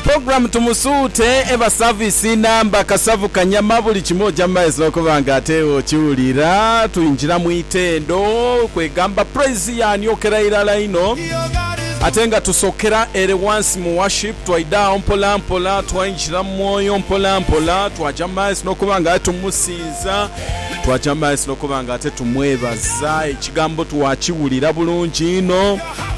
Program Tumusuute eba service namba kasavu kanyama buli kimu oja mumaiso nokuba nga ate okiwulira. Twingira mu itendo kwegamba praise yaniokera irala inho ate nga tusokera ere wansi mu worship twaida agho mpola mpola twaingira mu mwoyo mpola mpola twaja mumaiso nokuba nga ate tumusinza twaja mumaiso nokuba nga ate tumwebaza. Ekigambo twakiwulira bulungi inho.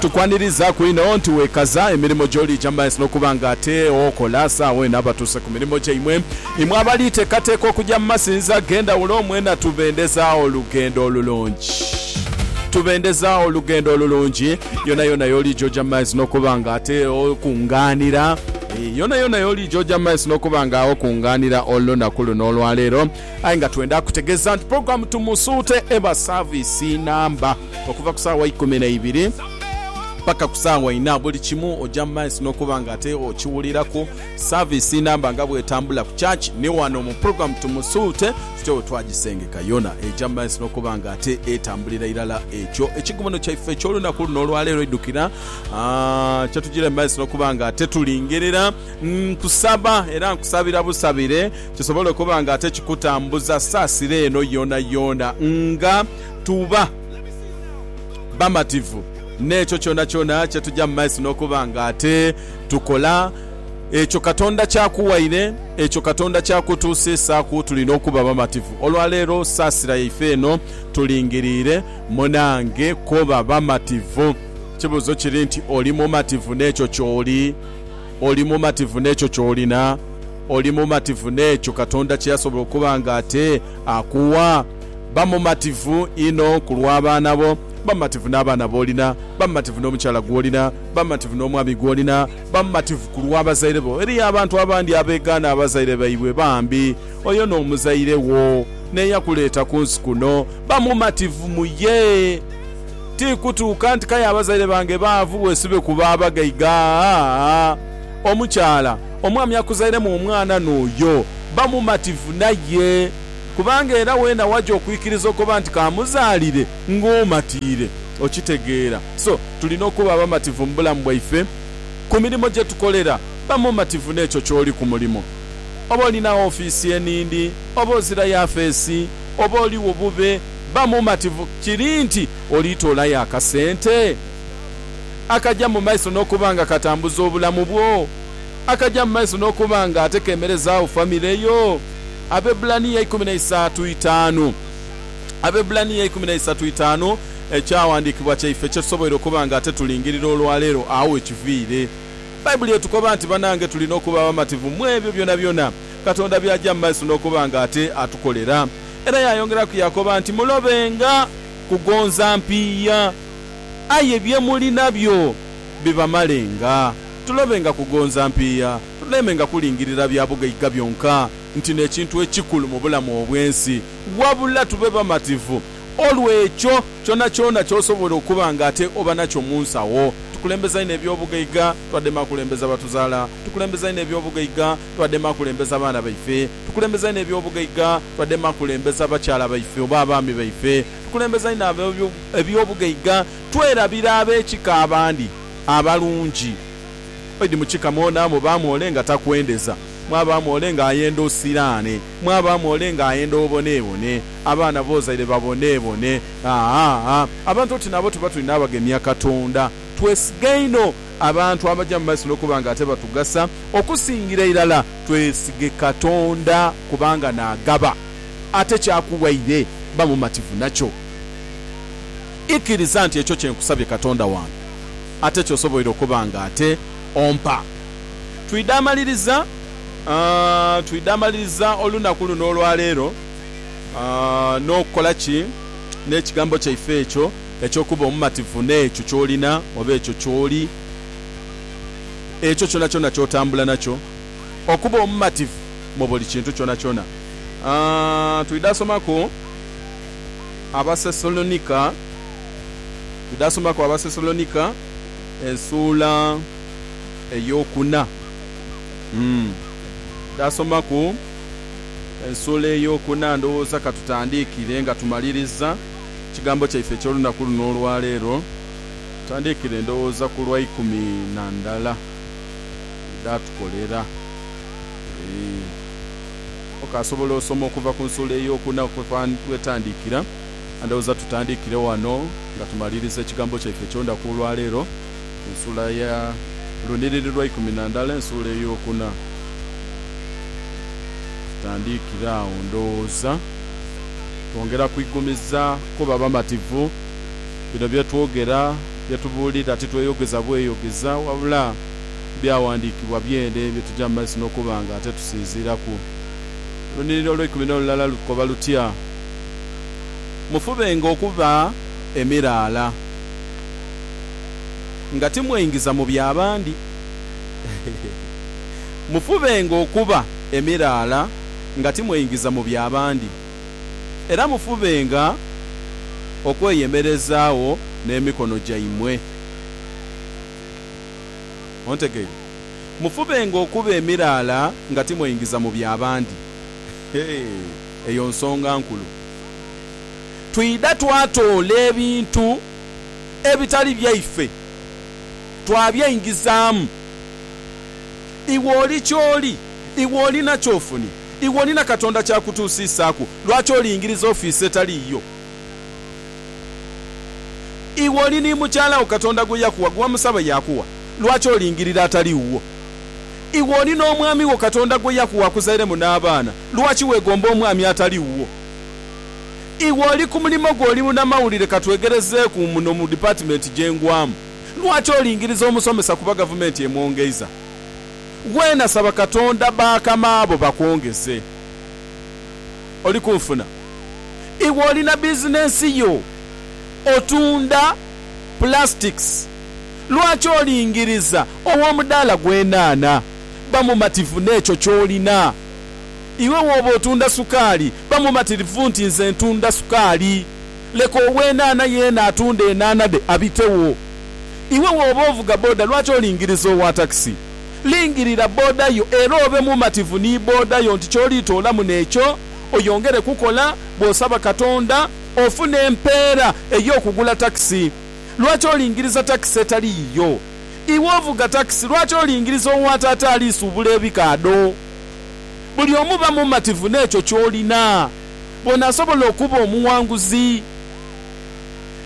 Tukwanirizaku inho nti wekaza emirimo gy'oliija mu maiso n'okuba nga ate okola saagho eno abatuuse ku mirimo gyaimwe. Imwe abali teekateeka okuja mu masinzizo ag'endhawulo mwena tubendeza olugendo olulungi. Tubendeza olugendo olulungi yonayona y'oliija oja mu maiso n'okuba nga ate okungaanira. Yonayona y'oliija oja mu maiso n'okuba nga okungaanira olunaku luno olwaleero. Aye nga twenda kutegeeza nti pulogulaamu Tumusuute eba saaviisi namba. okuva ku saawa ikumi na ibiri paka ku saawa inha. Buli kimu oja mu maiso nokuba nga ate okiwuliraku. Service namba nga bwetambula ku church ni wano mu program Tumusuute tutyo wetwagisengeka. Yona eja mu maiso nokuba nga ate etambulira irala ekyo. Ekigomono kyaife ekyolunaku luno olwaleero idukira kyetujira mu maiso nokuba nga ate tulingerera. Nkusaba era nkusabira busabire kisobole okuba nga ate kikutambuza saasira eno yonayona nga. tuba bamativu n'ekyo kyonakyona kye tuja mu maiso n'okuba nga ate tukola ekyo Katonda ky'akuwaire, ekyo Katonda ky'akutuusisaaku. Tulina okuba bamativu olwa leero. Saasira yaife eno tulingiriire. Munange, koba bamativu. Ekibuuzo kiri nti, oli mumativu n'ekyo ky'oli? Oli mumativu n'ekyo ky'olina? Oli mumativu n'ekyo Katonda kye yasobola okuba nga ate akuwa? Ba mumativu inho ku lw'abaana bo. Ba mumativu n'abaana b'olina. Ba mumativu n'omukyala gw'olina. Ba mumativu n'omwami gw'olina. Ba mumativu ku lw'abazaire bo. Eriyo abantu abandi abeegaana abazaire baibwe. Bambi, oyo n'omuzaire wo n'eyakuleeta ku nsi kuno. Ba mumativu mu ye. Ti kutuuka nti k'aye abazaire bange baavu bwesube ku ba bagaiga. Aa-a-a! Omukyala omwami akuzairemu omwana n'oyo, ba mumativu naye, kubanga era weena waja okwikiriza okoba nti k'amuzaalire ng'omatiire. Okitegeera? So, tulina okuba abamativu mu bulamu bwaife. Ku mirimo gye tukolera, ba mumativu n'ekyo ky'oli ku mulimo. Oba olina ofiisi enindi, oba ozira yafeesi, oba oligho bube, Ba mumativu kiri nti olitoolayo akasente akaja mu maiso n'okuba nga katambuza obulamu bwo, akaja mu maiso n'okuba nga ate keemerezaagho famire yo. Abebbulaniya ikumi na isaatu itaanu, Abebbulaniya ikumi na isaatu itaanu, Ekyawandiikibwa kyaife kye tusoboire okuba nga ate tulingirira olwaleero, agho we kiviire. Baibuli etukoba nti banange tulina okuba abamativu mu ebyo byonabyona Katonda by'aja mu maiso n'okuba nga ate atukolera. Era yaayongeraku yaakoba nti, Mulobenga kugonza mpiiya, aye bye muli nabyo bibamalenga. Tulobenga kugonza mpiiya, tulemenga kulingirira bya bugaiga byonka nti n'ekintu ekikulu mu bulamu obw'ensi, wabula tube bamativu olw'ekyo kyonakyona ky'osobola okuba nga ate oba nakyo mu nsawo. Tukulembeza inho eby'obugaiga, twadema kulembeza batuzaala. Tukulembeza inho eby'obugaiga, twadema kulembeza baana baife, tukulembeza inho eby'obugaiga, twadema kulembeza bakyala baife oba abaami baife, tukulembeza inho eby'obugaiga, twerabira ab'ekika abandi abalungi. Idi mu kika mwona mubaamu ole nga takwendeza, mwabaamu ole ng'ayenda osiraane, mwabaamu ole ng'ayenda oboneebone, abaana b'ozaire baboneebone. Haa, abantu oti nabo tuba tuli n'abagemya Katonda. Twesiga inho. abantu abaja mu maiso n'okuba nga ate batugasa. Okusingira irala, twesige Katonda kubanga naagaba, ate ky'akuwaire ba mumativu nakyo. Ikiriza nti ekyo kye nkusabye Katonda wange, ate ky'osoboire okuba nga ate ompa. Twidha amaliriza, twidha amaliriza olunaku luno olwaleero n'okukola ki n'ekigambo kyaife ekyo? eky'okuba omumativu n'ekyo ky'olina oba ekyo ky'oli, ekyo kyonakyona ky'otambula nakyo, okuba omumativu mu buli kintu kyonakyona. A Twidha somaku Abasesalonika, twidha somaku Abasesalonika esuula ey'okuna. Twidha somaku esuula ey'okuna, ndhowooza ka tutandiikire nga tumaliriza. Ekigambo kyaife eky'olunaku luno olwaleero, tutandiikire ndowooza ku lwa ikumi na ndala edhatukolera. Okaasobola osoma okuva ku nsuula ey'okuna wetandikira? Ndowooza tutandiikire ghano nga tumaliriza ekigambo kyaife eky'olunaku olwaleero. ensula ya lunhiriri lwa ikumi na ndhala ensuula ey'okuna. Tutandikire agho ndhoghoza twongera kwigumiza kuba bamativu. Bino bye twogera, bye tubuulira titweyogeza bweyogeza wabula Byawandiikibwa byene bye tuja mu maiso n'okuba nga ate tusinziiraku. Olunhiriri olw'eikumi n'olulala lukoba lutya? Mufubenga okuba emiraala. nga timweingiza mu bya bandi. Mufubenga okuba emiraala nga timweingiza mu bya bandi, era mufubenga okweyemerezaagho n'emikono gyaimwe. Ontegeire? Mufubenga okuba emiraala nga timweingiza mu bya bandi. Eyo nsonga nkulu. Twidha twatoola ebintu. ebitali byaife twabyaingizaamu. Iwe oli ky'oli, iwe olina ky'ofunye, iwe olina Katonda ky'akutuusiisaaku, lwaki olingiriza ofiisi etali yiyo? Iwe oli ni mukyala wo Katonda gwe yakuwa, gwe wamusaba yaakuwa, lwaki olingirira atali wuwo? Iwe oli n'omwami wo Katonda gwe yakuwa akuzairemu n'abaana, lwaki weegomba omwami atali wuwo? Iwe oli ku mulimo gwe, oli munamawulire, ka twegerezeeku muno mu dipatimenti gye ngwamu. Lwaki olingiriza omusomesa kuba gavumenti emwongeiza? Weena saba Katonda bakama bo bakwongeze. Oli ku nfuna. Iwe olina bizinensi yo, otunda plastics. Lwaki olingiriza ow'omudaala gw'enhaanha? Ba mumativu n'ekyo ky'olina. Iwe bw'oba otunda sukaali, ba mumatirivu nti nze ntunda sukaali. Leka ow'enhaanha yeena atunde enhaanha dhe abitewo. Iwe bw'oba ovuga boda, lwaki olingiriza owa takisi? Lingirira boda yo era obe mumativu ni boda yo nti ky'oliitoolamu n'ekyo oyongere kukola bw'osaba Katonda ofune empeera ey'okugula takisi. Lwaki olingiriza takisi etali yiyo? Iwe ovuga takisi, lwaki olingiriza owa taata ali suubula ebikaadho? Buli omu ba mumativu n'ekyo ky'olina. Bw'onaasobola okuba omuwanguzi,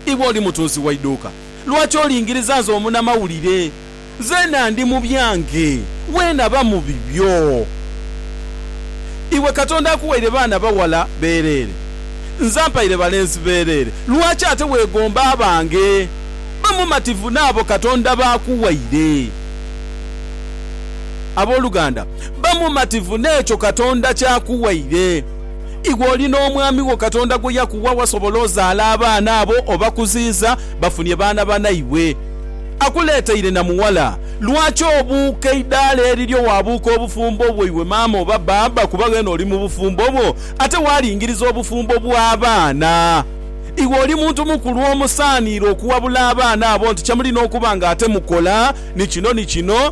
iwe oli mutunzi wa idhuuka, lwaki olingiriza nze omunamawulire? Nzeena ndi mu byange, weena ba mu bibyo. Iwe Katonda akuwaire baana baghala beereere, nze ampaire balenzi beereere, lwaki ate weegomba abange? Ba mumativu n'abo Katonda b'akuwaire. Aboluganda, Ba mumativu n'ekyo Katonda ky'akuwaire. Iwe oli n'omwami wo Katonda gwe yakuwa wasobola ozaala abaana abo obakuziiza bafunie baana banaibwe. Akuleeteire na mughala. Lwaki obuuka eidaala eriryo waabuuka obufumbo bwo iwe maama oba bbaabba kuba weena oli mu bufumbo bwo ate waalingiriza obufumbo bw'abaana? Iwe oli muntu mukulu omusaaniire okuwabula abaana abo nti kye mulina okuba ng'ate mukola ni kino ni kino.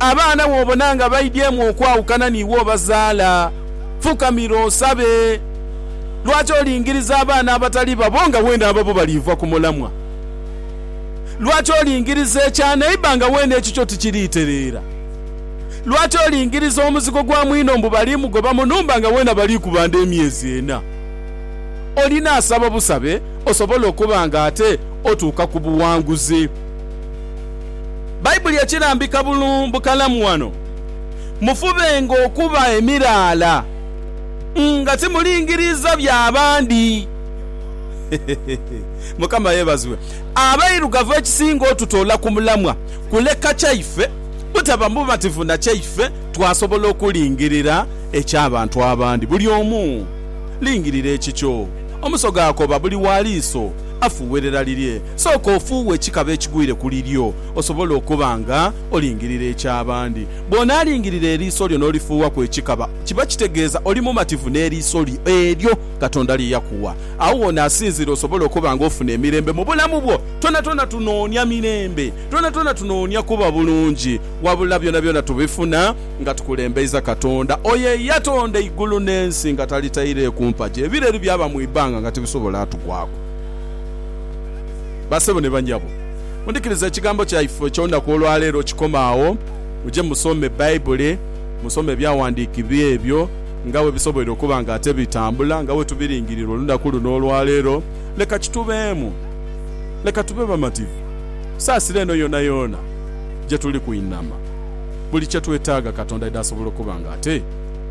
Abaana bw'obona nga baidyemu okwawukana n'iwe obazaala, fukamira osabe. Lwaki olingiriza abaana abatali babo nga weene ababo baliiva ku mulamwa? Lwaki olingiriza ekya neiba nga weene ekikyo tikiriitereera? Lwaki olingiriza omuzigo gwa mwino mbu baliimugoba mu nhumba nga weene abaliikubanda emyezi ena? Olinaasaba busabe osobole okuba nga ate otuuka ku buwanguzi. Baibuli ekirambika bukalamu ghano, Mufubenga okuba emiraala, nga timulingiriiza bya bandi. Mukama yeebazibwe! Abairugavu ekisinga otutoola ku mulamwa kuleka kyaife butaba mumativu na kyaife, twasobola okulingirira eky'abantu abandi. Buli omu lingirira ekikyo. Omusoga akoba buli wa liiso afuuwerera lirye. Sooka ofuuwe ekikaba ekigwire ku liryo, osobole okuba nga olingirira eky'abandi. Bw'onaalingirira eriiso lyo n'olifuuwaku ekikaba, kiba kitegeeza oli mumativu n'eriiso lyo eryo Katonda lye yakuwa. Agho w'onaasinziira osobole okuba nga ofuna emirembe mu bulamu bwo. Twonatwona tunoonia mirembe. Twonatwona tunoonia kuba bulungi. Wabula byonabyona tubifuna nga tukulembeiza Katonda, oyo eyatonda eigulu n'ensi nga talitaireeku mpagi, ebireri byaba mu ibanga nga tibisobola tugwaku. Basebo ni banyabo, mudhikirize ekigambo kyaife eky'olunaku olwaleero. Kikoma agho, muje musome Baibuli, musome ebyawandiikibwa ebyo nga bwe bisoboire okuba nga ate bitambula nga bwe tubiringirira olunaku luno olwaleero. Leka kitubeemu. Leka tube bamativu. Saasira eno yoonayoona gye tuli kwinama. Buli kye twetaaga Katonda aidha asobola okuba nga ate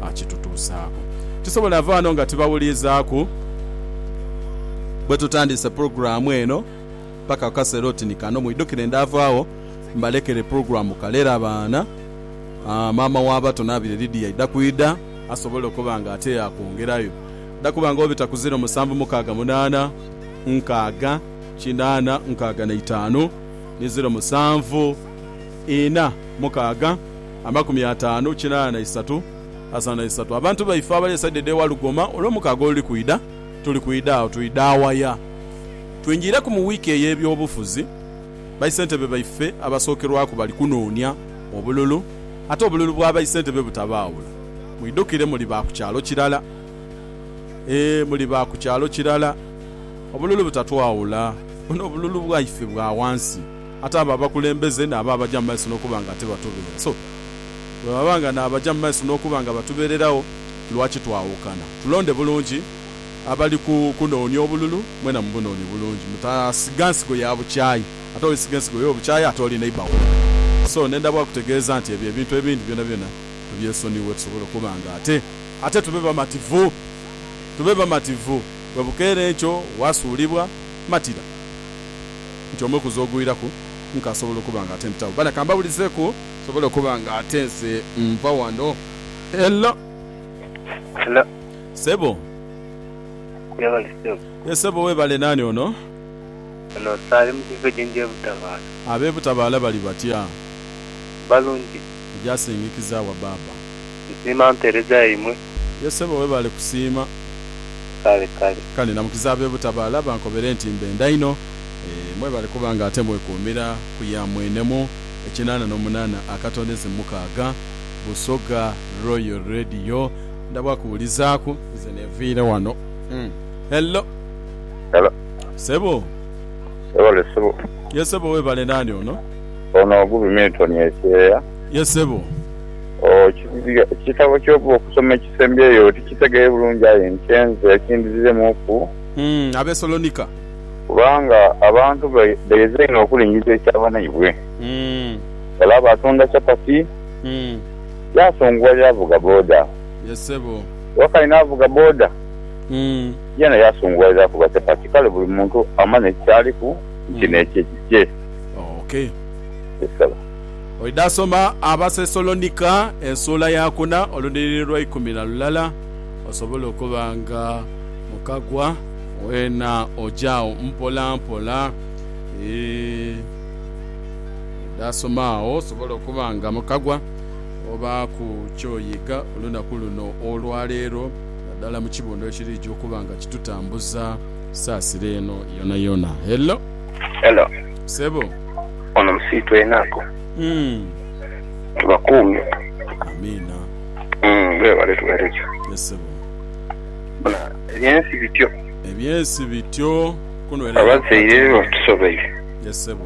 akitutuusaaku. Tisobole ava ghano nga tibawuliizaaku. bwetutandiise pulogulaamu eno paka ku kaseera oti ni kano. Mwidhukire ndaavaagho mbalekere pulogulaamu Kalera Abaana, maama w'abato Naabire Lydia aidha kwidha asobole okuba nga ate yaakwongerayo. Aidha kuba nga obita ku ziro musanvu mukaaga munaana nkaaga kinaana nkaaga na itaanu ni ziro musanvu ina mukaaga amakumi ataanu kinaana na isatu asatu na isatu. Abantu baife abali esaidi edh'ewa Lugoma, Olwomukaaga oluli kwidha, Tuli kwidha agho twidha waya? Twingiireku mu wiiki ey'ebyobufuzi, baisentebe baife abasookerwaku bali kunoonia obululu ate obululu bwa baisentebe butabaawula. Mwidhukire muli ba ku kyalo kirala. Eeh muli ba ku kyalo kirala. Obululu butatwawula. Buno obululu bwaife bwa wansi ate abo abakulembeze naabo abaja mu maiso n'okuba nga tibatubeera so bwebaba nga n'abaja mu maiso n'okuba nga batubeererawo, Lwaki twawukana? Tulonde bulungi abali kunoonia obululu, mwena mubunoonie bulungi. Mutasiga nsigo ya bukyayi. Ate bw'olisiga ensigo y'obukyayi ate oli neighbour wo. So nenda bwa kutegeeza nti ebyo ebintu ebindi byonabyona tubyesonighe tusobole okuba nga ate ate tube bamativu. Tube bamativu. Bwe bukeera enkyo waasuulibwa, matira nti omwe ku z'ogwiraku nkasobola okuba nga ate mpitawo. Bana kambawulizeku nsobole okuba nga ate nze nva wano. Hello. Hello. Sebo. Webale sebo. Ye sebo webale nani ono? Ono saali mukigo ejenje butabaala. Abe butabaala bali batya? Balungi. Ojasingikizawa baaba. Nsiima mpereza yaimwe. Ye sebo webale kusiima. Kale kale. Kale namukiza abe butabaala bankobere nti mbenda inho. Eeh mwebale kuba nga ate mwekuumira ku ya mwenemu. Ekinana no munana akatondeze mukaaga. Busoga Royal Radio ndabwa kuwulizaaku nze neviire wano umm hello Hello. Sebo. Webale sebo. Yes sebo webale nani ono? Ono Gubi Milton ekyeya. Yes sebo. Oh kitabo kyoba okusoma ekisembyeyo tikitegeye bulungi aye nte nze kindiziremu ku. Umm abesolonika. Kubanga abantu beyeze inho okulingiza ekya banaibwe. Umm. Olaba atunda chapati. Yaasunguwa yaavuga boda. Wakali n'avuga boda, yeena yaasunguwalira kuba chapati. Kale buli muntu amanya eki ky'aliku nti n'ekye kikye. Yes Sebo. Oidha soma Abasesalonika esuula ya kuna oludhiliri lwa ikumi na lulala osobole okuba nga mukagwa weena oja agho mpolampola. Eeh. Dhasoma agho osobole okuba nga mukagwa obaaku ky'oyiga olunaku luno olwaleero naddala mu kibundho ekiriija okuba nga kitutambuza saasira eno yonayona. Hello. Hello. Ssebo. Ono musiitwa enaku. Tubakuumye. Amiina. Weebale tuweereza. Yes ssebo. Bona eby'ensi bityo. Eby'ensi bityo. Kunwerera Abazaire batusobeire. Yes ssebo.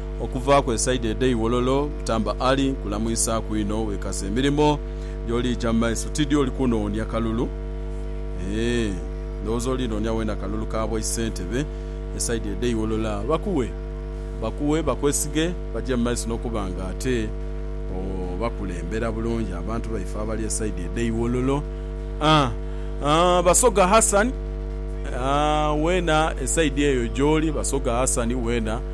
okuvaaku esaidi edh'e Iwololo, Butamba Ali kulamwisaaku inho wekaze emirimo gy'oliija mu maiso tidhi oli kunoonia kalulu eeh ndhowooza olinoonia wena kalulu ka bwa Isentebe esaidi edh'e Iwololo aah bakuwe bakuwe bakwesige baje mu maiso n'okuba nga ate obakulembera bulungi abantu baife abali esaidi edh'e Iwololo aah aah Basoga Hassan aah wena esaidi eyo gy'oli Basoga Hassan wena.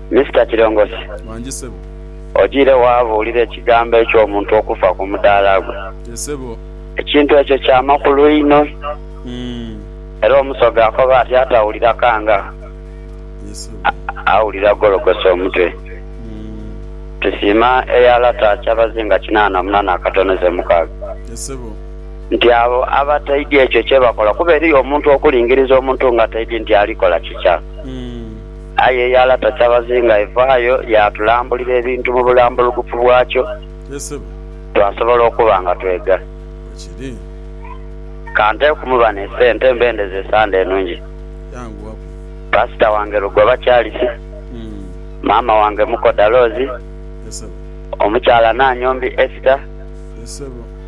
Mister Kirongosi, Wangi sebo. ojiire waabuulira ekigambo eky'omuntu okufa ku mudaala gwe. Ye sebo. Ekintu ekyo kya makulu inho. Umm. Era Omusoga akoba ati atawulira kanga, Ye sebo. awulira gologose omutwe. Umm. Tusiima eya lata kyabazinga kinaana mu nana akatono ze mukaaga. Ye sebo. Nti abo abataidhi ekyo kyebakola, kuba eriyo omuntu okulingiriza omuntu nga taidhi nti alikola kikya. Umm. Aye eyala takyabazinga evaayo yaatulambulira ebintu mu bulambulugufu bwakyo, twasobola okuba nga twega. Ka nteekumu bano esente mbendeze esande enungi. Pasita wange Lugoba Charles, maama wange Mukoda Rose, omukyala Nannyombi Esther,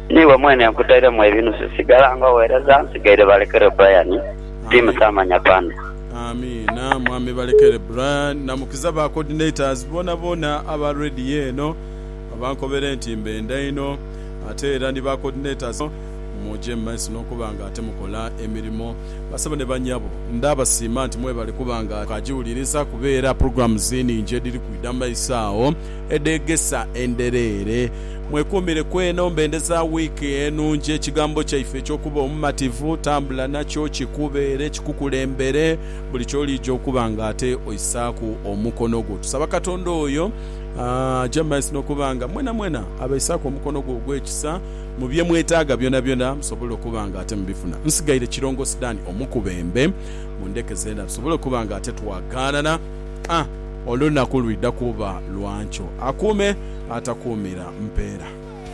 niiwe mwene nkutairemu ebinusu sigala nga oweereza nsigaire balekere Brian, Team Saamanya Panda. Amiina mwami balekere Brian na mukiza ba coordinators bonabona aba radio eno abankobere nti mbenda inho ate era ni ba coordinators muje mumaiso nokuba nga ate mukola emirimo basebo ne banyabo ndabasiima nti mwebale kuba nga mukajiwuliriza kuba era programs ningi ediri kwida mumaiso agho edheegesa endhereere. Mwekuumire ku eno mbende za wiiki enungi. Ekigambo kyaife eky'okuba omumativu, tambula nakyo kikubeere kikukulembere buli ky'oliija okuba nga ate oisaaku omukono gwo. Tusaba Katonda oyo aje mu maiso n'okuba nga mwenamwena abaisaaku omukono gwe ogw'ekisa mu bye mwetaaga byonabyona musobole okuba nga ate mubifuna. Nsigaire Kirongosi Dan omukubembe. Mundheke zeena tusobole okuba nga ate twagaanana. a olunaku lwidha kuba lwa nkyo, akuume atakuumira mpeera.